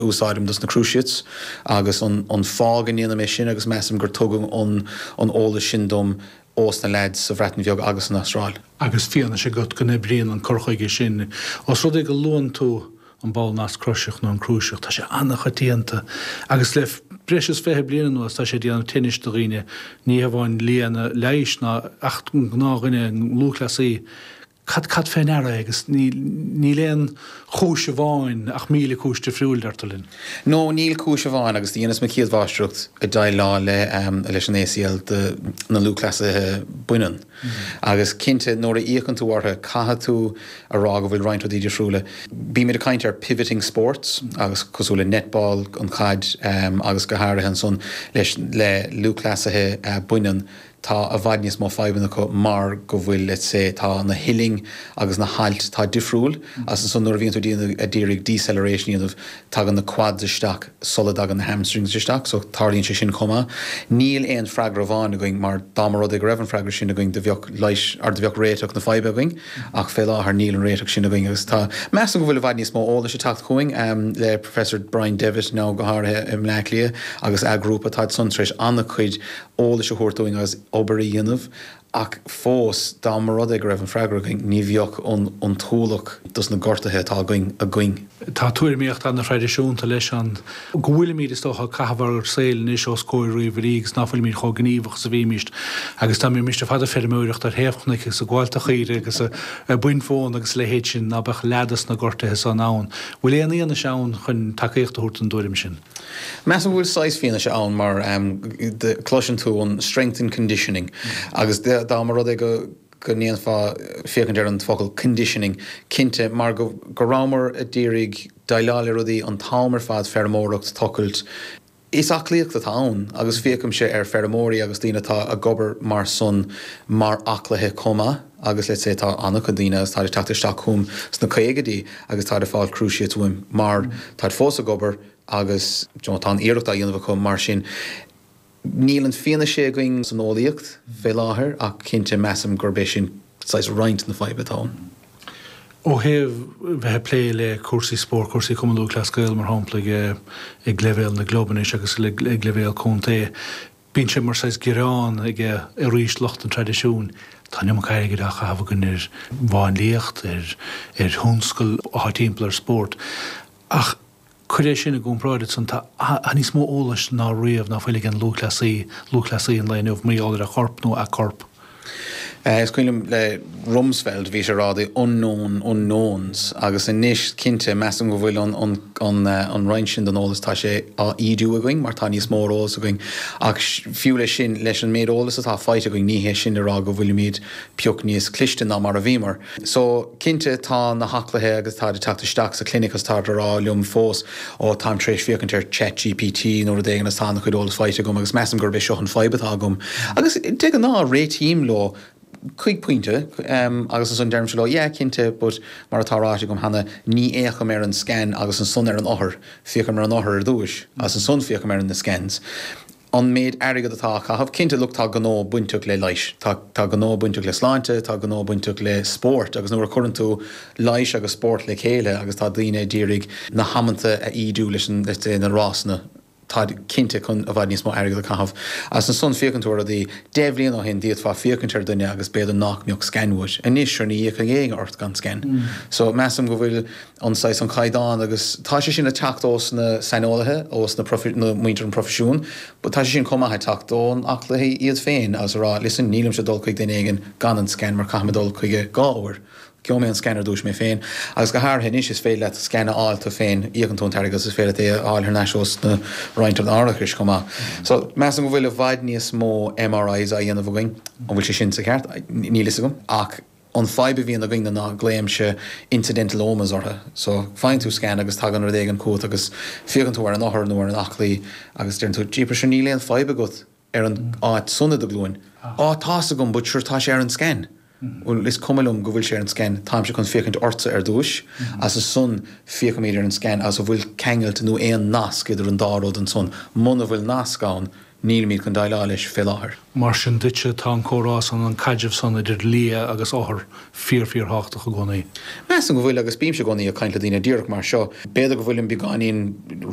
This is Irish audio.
úsáidim dos na cruciates agus an fáth go ndéanaim é sin agus measaim gur tugadh an t-eolas sin dom ós na leaids sa Bhreatain Bheag agus san Astráil. Agus fianaise agat go n-oibríonn an cur chuige sin, os rud é go luann tú an ball nasc croiseach nó an cruciate, tá sé an-choitianta agus le breis is fiche bliain anuas tá sé ag déanamh tinnis do dhaoine, ní hamháin lianna leighis ach gnáthdhaoine, lúthchleasaithe. Cad cad fé ndeara é agus níl, níl aon chúis amháin ach míle cúis difriúil, deirtear linn. No, níl cúis amháin agus do dheineas mo chéad mháistreacht ag déileáil le, leis an ACL do na lúthchleasaithe baineann agus cinnte nuair a fhéachann tú orthu caithfidh tú a rá go bhfuil roinnt rudaí difriúla. Bímid ag caint ar pivoting sports agus cosúil le netball, an chaid agus go háirithe ansan leis, le lúthchleasaithe baineann, tá i bhfad níos mó fadhbanna acu mar go bhfuil let's say tá na huillinn agus na hailt tá difriúil agus ansan nuair a bhíonn tú a d'iarraidh deceleration a dhéanamh tagann na quads isteach sula dtagann na hamstrings isteach so tarlaíonn sé sin chomh maith. Níl aon freagra amháin againn mar dá mba rud é go raibh an freagra sin againn do bheadh leigheas or do bheadh réiteach na faidhbe againn ach fé láthair níl an réiteach sin againn agus tá measaim go bhfuil i bhfad níos mó eolais ag teacht chugainn le Professor Brian Devitt now go háirithe i mBleácliath agus a ghrúpa táid san tar éis an-chuid eolais a thabhairt dúinn agus obair a dhéanamh ach fós dá mba rud é go raibh an freagra againn ní bheadh an t-ualach dos na gortuithe atá againn. Tá tuairimíocht an-thraidisiúnta leis an go bhfuilimid, is dócha, ag caitheamh ár saoil anois os comhair ríomhairí agus ná fuilimid chomh gníomhach is a bhímis agus dá mbeimis ar fad ag feirmeoireacht ar thaobh chnoic agus ag gabháilt de chaoire agus ag baint mhóna agus a leithéid sin ná beadh leath dos na gortuithe san ann. Bhfuil aon fhianaise ann chun tacaíocht a thabhairt don dtuairim sin? Measaim go bhfuil saghas fianaise ann mar cloiseann tú an strength and conditioning agus dá mba rud é go ndéanfá féachaint ar an focal conditioning, cinnte mar go rabhamar d'iarraidh déileáil le rudaí an t-am ar fad, feirmeoireacht, tochailt. Is aclaíocht atá ann agus féachaimse ar feirmeoirí agus daoine atá ag obair mar san mar aclaithe chomh maith. Agus let's say tá an-chuid daoine agus táid ag teacht isteach chugam sna caogaidí agus táid ag fáil cruciates uaim mar táid fós ag obair agus you know tá an iarracht á dhéanamh acu mar sin níl an fhianaise againn san eolaíocht fé láthair ach cinnte measaim gurb é sin saghas roinnt na faidhbe atá ann. Ó thaobh bheith ag plé le cúrsaí spóirt, cúrsaí Chumann Lúthchleas Gael mar shampla ag leibhéal na gclub anois agus ag leibhéal contae, Bíonn sé mar saghas gearán ag arís lucht an traidisiúin, tá an iomarca airgid á chaitheamh againn ar mháinliacht, ar thionscail atá timpeall ar spórt. Ach cuir é sin i gcomparáid, ansan, tá níos mó eolais ná riamh ná fuil ag an lúthchleasaí, lúthchleasaí an lae inniu, mar gheall ar a chorp nó a corp. Is cuimhin liom le Rumsfeld, bhí sé ag rá 'the unknown unknowns' agus anois cinnte measaim go bhfuil an roinnt sin den eolas, tá sé á ídiú againn mar tá níos mó eolas againn. Ach fiú leis sin, leis an méid eolas atá faighte againn, ní hé sin le rá go bhfuilimid pioc níos cliste ná mar a bhíomar. So, cinnte, tá na haclaithe agus táid ag teacht isteach sa chlinic agus táid ag rá liom fós, oh, táim tar éis féachaint ar Chat GPT nó rud éigin agus tá an-chuid eolas faighte agam agus measaim gurb é seo an fadhb atá agam. Agus de ghnáth, réitím leo, chuig pointe, agus ansan deirimse leo, yeah, cinnte, but mar atá ráite agam cheana, ní fhéachaim ar an scan agus ansan ar an othar, féachaim ar an othar ar dtúis agus ansan féachaim ar na scans. an méid airgead atá á chaitheamh. Cinnte, look, tá gnó bainteach le leighis, tá gnó bainteach le sláinte, tá gnó bainteach le spórt agus nuair a chuireann tú leighis agus spórt le chéile agus tá daoine a d'iarraidh na hamanta a ídiú leis an, let's say, na rásanna, táid cinnte chun i bhfad níos mó airgead a chaitheamh. Agus ansan féachann tú ar rudaí, deich mbliain ó shin d'fhéadfá féachaint ar dhuine agus b'fhéidir nách mbeadh scan uait. Anois, sure, ní fhéachfaidh éinne ort gan scan. So, measaim go bhfuil. an saghas, an caighdeán agus tá sé sin ag teacht ós na saineolaithe, ós na muintir an proifisiún but tá sé sin chomh maith ag teacht ó na aclaithe iad féin agus ag rá listen nílimse ag dul chuig duine éigin gan an scan mar caithfidh mé dul chuige dhá uair, gheobhaidh mé an scan ar dtús mé féin agus go háirithe anois is féidir leat scan a fháil tú féin, íocann tú an t-airgead agus is féidir leat é a fháil thar n-ais ós na roinnt an árachais chomh maith. So measaim go bhfuil i bhfad níos mó MRIs á dhéanamh againn, an bhfuil sé sin sa cheart? Níl fhios agam ach. An fadhb a bhíonn againn ná glaoimse incidentalomas orthu. So, faigheann tú scan agus tagann rud éigin chugat agus féachann tú ar an othar nó ar an aclaí agus deireann tú, jeepers, sure níl aon fadhb agat ar an áit san i do ghlúin. Á, tá's agam but sure tá sé ar an scan. Bhuel, is cuma liom go bhfuil sé ar an scan, táimse chun féachaint ortsa ar dtúis agus ansan féachaimid ar an scan agus an bhfuil ceangailt nó aon nasc idir an dá rud ansan. Muna bhfuil nasc ann, Nílimid chun déileáil leis fé láthair. Mar sin duitse, tá an comhrá san, an caidreamh san idir lia agus othar, fíor, fíor thábhachtach i gcónaí. Measaim go bhfuil agus bímse i gcónaí ag caint le daoine díreach mar seo. B'fhéidir go bhfuilim beagáinín.